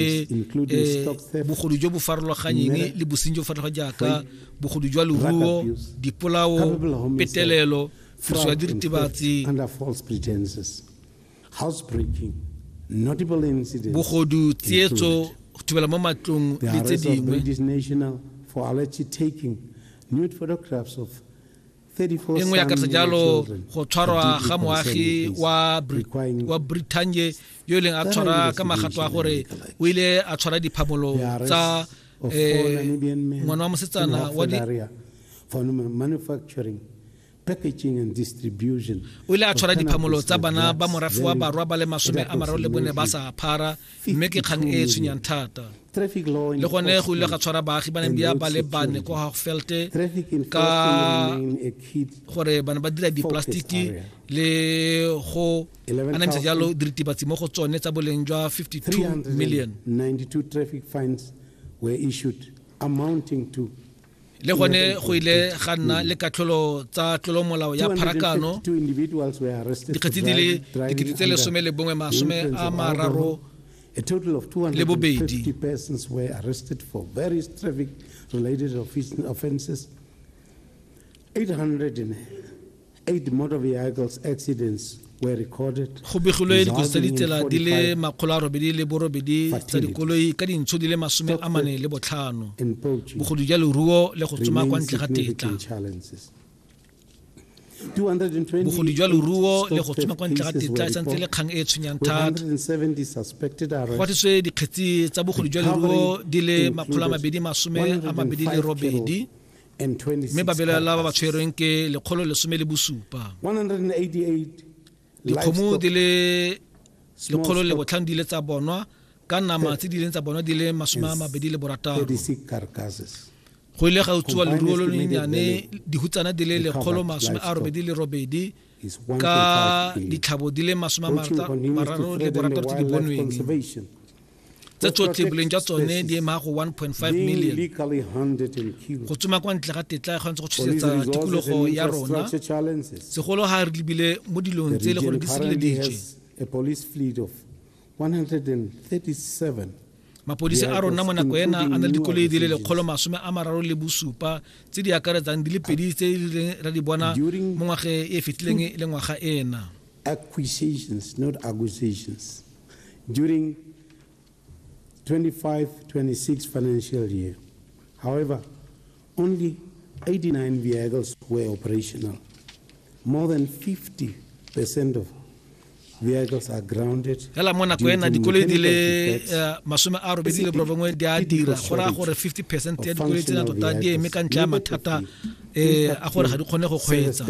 e bogodu jo bo farologanyeng le bosenyi jo farologa jaaka bogodu jwa leruo dipolao petelelo tiriso ya diritibatsi bogodu tsietso go thubela mo matlong le tse dingwe e nngwe ya karisa jalo go tshwarwa ga moagi wa brithanye yo e leng a tshwara ka magato a gore o ile a tshwara diphamolo tsa eh, ngwana wa mosetsana wa packaging and distribution o ile a tshwara diphamolo tsa bana ba morafe wa barwa ba le masome a mararo le bone ba sa phara mme ke kgang e e tshwenyang thata le gone go ile ga tshwara baagi ba neng ba le bane ko hagfelte ka gore bana ba dira diplastiki le go anamisa jalo diritibatsi mo go tsone tsa boleng jwa 52 million were issued amounting to le gone go ile ga nna le katlholo tsa tlolomolao ya pharakano dikgetsi di le dikete tse lesome le bongwe masome a mararo le bobedi Eight motor vehicles accidents were recorded. Go begilwe dikotsi tsa ditsela di le makgolo a robedi le borobedi tsa dikoloi ka dintsho di le masome a mane le botlhano bogodu ja leruo le go tsoma kwa ntle ga tetla bogodu jwa leruo le go tsoma kwa ntle ga tetla e santse le kgang e e tshwenyang thata go atiswe dikgetsi tsa bogodu jwa leruo di le makgolo a mabedi masome a mabedi le robedi mme ba belaela ba ba tshwerweng ke lekgolo lesome le bosupa dikgomo di le lekgolo le botlhano di ile tsa bonwa ka nama tse di ileng tsa bonwa di le masome a mabedi le borataro go ile ga utswa leruo lo lennyane dihutsana di le lekgolo masome a robedi le robedi ka ditlhabo di le masome a mararo le borataro tse di bonweng tse tsotlhe boleng jwa tsone di ema go 1.5 million go tsoma kwa ntle ga tetla e kgonetse go tshosetsa tikologo ya rona segolo ga re lebile mo dilong tse e le gore di sireleditswe 137. Mapodisi a rona mo nako ena a na le dikoloi di le lekgolo masome a mararo le bosupa tse di akaretsang di le pedi tse di reng ra di bona mo ngwageng e e fetileng le ngwaga ena. acquisitions, not acquisitions, during 25-26 financial year. However, Only 89 vehicles were operational. More than 50% of vehicles are grounded. Hela mona ko ena dikoloi di le eh, masome a robedi le borobongwe di a dira go raya gore 50 percent ya dikoloi tsena tota di eme ka ntle ya mathata um a gore ga di kgone go kgweetsa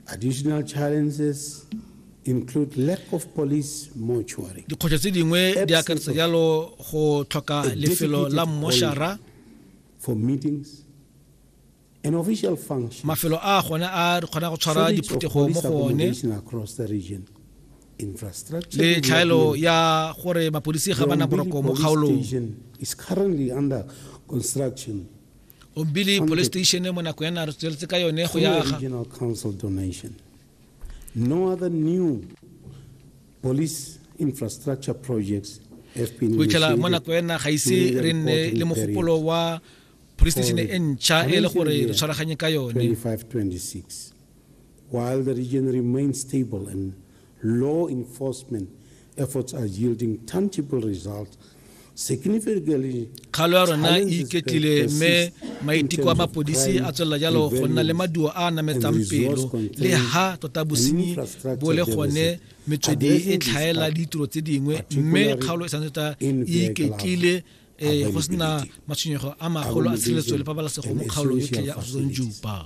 Additional challenges include lack of police mortuary. Dikgwetlho tse dingwe di akaretsa jalo go tlhoka lefelo la moshara for meetings an official function. Mafelo a gone a re kgona go tshwara diphuthego mo go one le tlhaelo ya gore mapodisi ga bana boroko mo kgaolong is currently under construction ombili police station mo nako ya naro tsweletse ka yone go yaga regional council donation no other new police infrastructure projects have been go itlhela mo nako ya naga ise re nne le mogopolo wa police station e ntšha e le gore re tshwaraganye ka yone 2526 while the region remains stable and Law enforcement efforts are yielding tangible results kgalo ya rona e iketlile mme maiteko a mapodisi a tswelela jalo go nna le maduo a a nametsang pelo le ha tota bosenyi bo le gone metswedi e tlhaela le ditiro tse dingwe mme kgaolo e santse tota e iketlile um go sena matshwenyego a magolo a tshireletso le pabalesego mo kgaolong yotlhe ya arizon juba